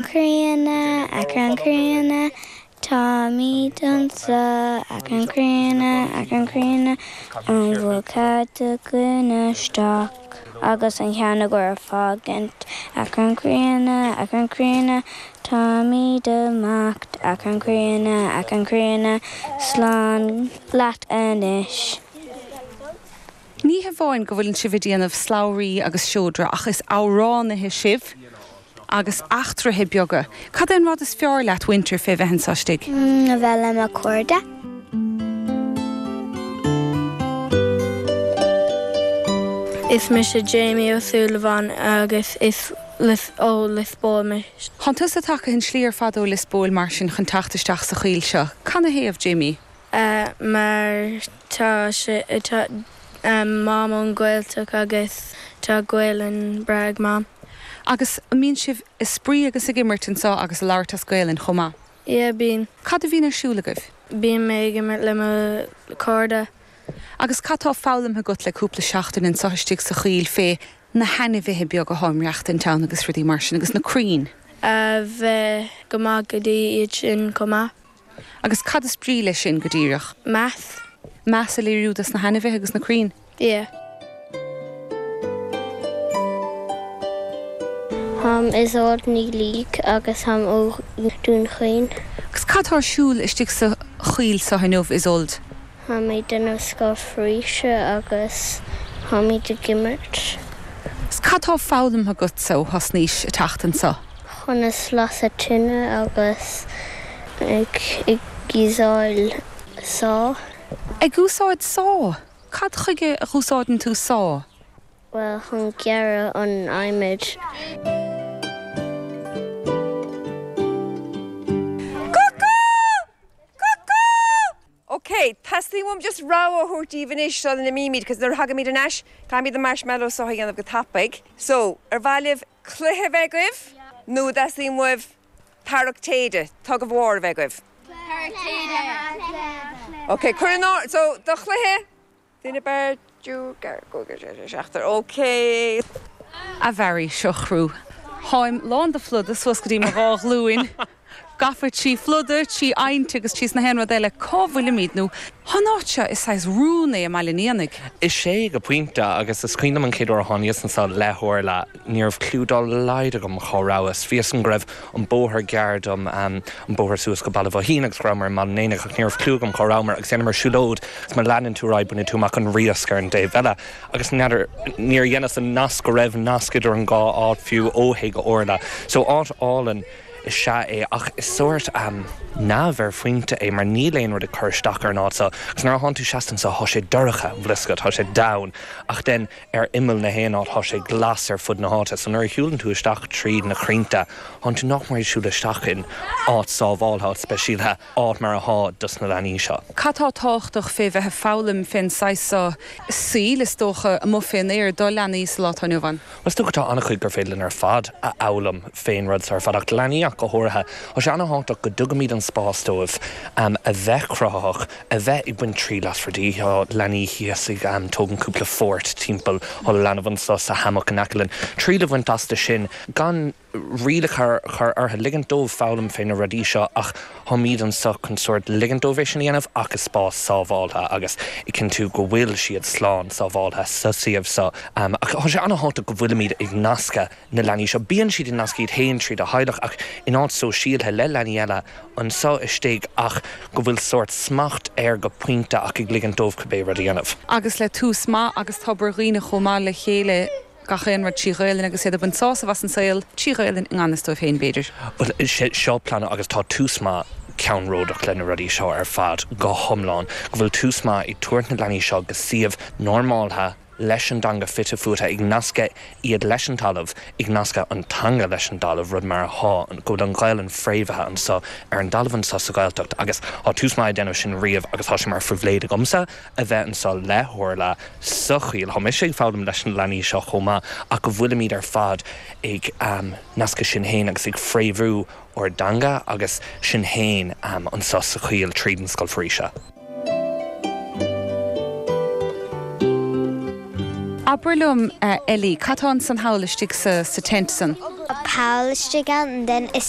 Críonna, Achrann Críonna, Táimid anso, Achrann Críonna, Achrann Críonna, An bhfuil cead againn isteach agus an ceann a gcúl fágaint? Achrann Críonna, Achrann Críonna, Táimid amach, Achrann Críonna, Achrann Críonna, Slán leat anois. Ní hamháin go bhfuil sibh ag déanamh slabhraí agus seodra ach is amhránaithe sibh agus eachtraithe beaga. Cad é an rud is fearr leat maidir fé bheith anseo istigh? A bheith le mo cairde. Is mise Jamie Ó Súilleabháin agus is ó Lios Póil mé. Tánn tusa tagtha an slí ar fad ó Lios Póil mar sin chun teacht isteach sa choill seo. Canathaobh, Jamie? a mar tá sé tá Mam ón Ghaeltacht agus tá Gaelainn breá ag Mam. Agus an mbíonn sibh a' spraoi agus ag imirt anseo agus a' labhairt as Gaelainn chomh maith? Yeah bíonn. Cad a bhíonn ar siúl agaibh? Bíonn mé ag imirt le mo cairde. Agus cad tá foghlamtha agat le cúpla seachtain anseo istigh sa choill fé na hainmhithe beaga atá ag maireachtaint ann agus rudaí mar sin agus na crainn? a bheith go maith go dtí iad sin chomh maith. Agus cad is brí leis sin go díreach? Meas. Meas a léiriú dos na hainmhithe agus na crainn? Yeah. Is mise Isolde Ní Laoigh agus táim ó Dún Chaoin. Agus cad atá ar siúl istigh sa choill seo inniu, Isolde? Táimid ag déanamh scoil foraoise agus táimid ag imirt. Cad tá foghlamtha agat ó thosnaís a teacht anso? conas lasadh tine agus ag úsáid saw. Ag úsáid saw? Cad chuige a dh'úsáideann tú saw? Bhuel, chun gearradh an adhmaid. OK, teastaíonn uaim just rabhadh a thabhairt díbh anois sula n-imímid because nuair a thagaimid ar ais caithfimid na marshmallows seo a dhéanamh go tapaidh. So, ar mhaith libh cluiche a bheith agaibh nó an dteastaíonn uaibh tarrac téide, tug of war, a bheith agaibh? Tarrac téide! Cluiche! OK, cúigear, so, do chluiche. Duine, beirt, cúigear, cúigear, seisear, seachtar, OK. A Mháire, seo chú. Táim lán de phluda, suas go dtí mo dhá ghlúin gafa trí phluda, trí abhainn agus tríos na haon rud eile. Cá bhfuilimid? Cén áit seo, is saghas rún é i mBaile an Éanaigh. Is ea, go pointe, agus is cuimhin liom an chéad uair a tháiníos anso, leathuair le. Ní raibh cliú dá laghad agam cá rabhas. Bhí a fhios agam go raibh an bóthar gearr dom, an bóthar suas go Baile Bhoithín, agus go rabhamair i mBaile an Éanaigh, ach ní raibh cliú agam cá rabhamair. Agus dheineamair siúlóid, agus má leanann tú ar aghaidh bainfidh tú amach an Riasc ar an dtaobh eile. Agus n'fheadar, níor dheineas an nasc go raibh nasc idir an dhá áit fiú, ó thaobh Orla. So, áit álainn is ea é, ach is sórt neamh ar pointe é, mar níl aon rud ag cur isteach ar an áit so. Agus nuair a thánn tú seasta anso, thá sé dorcha, you know, like, thá sé domhain, ach then, ar imeall nach aon áit, tá sé glas ar fud na háite, so nuair a shiúlann tú isteach tríd na croinnte, tánn tú nach mór ag siúl isteach in áit sábháilte, áit speisialtha, áit mar a thá dos na leanaí seo. Cad tá tábhachtach fé bheith ag foghlaim fén saghas so saoil, is dócha, amuigh fén aer, do leanaí sa lá tá inniu ann? Bhuel, is dócha tá an-chuid gur féidir linn ar fad a fhoghlaim fén rud so ar fad, ach leanaí ach go háirithe. Tá sé an-thábhachtach go dtugaimid an spás dóibh a bheith cruthaitheach, a bheith ag baint triail as rudaí. Tá leanaí thíos ag tógaint cúpla fórt timpeall, tá leanbh anso sa hammock in aice linn, triail a bhaint astu sin gan rialacha a chur orthu, ligint dóibh foghlaim fé na rudaí seo ach táimíd anso chun sórt ligint dóibh é sin a dhéanamh ach i spás sábháltha agus ag cinntiú go bhfuil siad slán sábháltha sa suíomh so. Tá sé ana-thábhachtach go bhfuilimíd ag nascadh. na leanaí seo. Bíonn siad ag nascadh iad féin tríd an teaghlach ach in áit sóisialta le leanaí eile anso istigh ach go bhfuil sórt smacht air go pointe ach ag ligint dóibh cibé rud a dhéanamh. agus le Tús Maith agus Tobar Dhuibhne chomh maith le chéile gach aon rud trí Ghaolainn agus iad ag baint sásamh as an saol trí Ghaolainn i ngan fhios dóibh féin, b'fhéidir. Bhuel, sé seo an plean agus tá Tús Maith ceannródaíoch le na rudaí seo ar fad go hiomlán, go bhfuil Tús Maith ag tabhairt na leanaí seo go suíomh normáltha, leis an dteanga fite fuaite, ag nascadh iad leis an talamh, ag nascadh an teanga leis an talamh, rud mar athá, go bhfuil an Ghaelainn fréamhaithe anso, ar an dtalamh anso sa Ghaeltacht agus thá Tús Maith ag déanamh sin riamh agus thá sé mar phribhléid agamsa a bheith anso le hOrla sa choill, thá mise ag foghlaim leis na leanaí seo chomh maith ach go bhfuilimid ar fad ag nascadh sinn fhéin agus ag fréamhú ár dteanga agus sinn féin anso sa choill tríd an Scoil Foraoise seo. Abair liom, a Ellie, cad tá ansan thall istigh sa tent san? Thall istigh ann then is.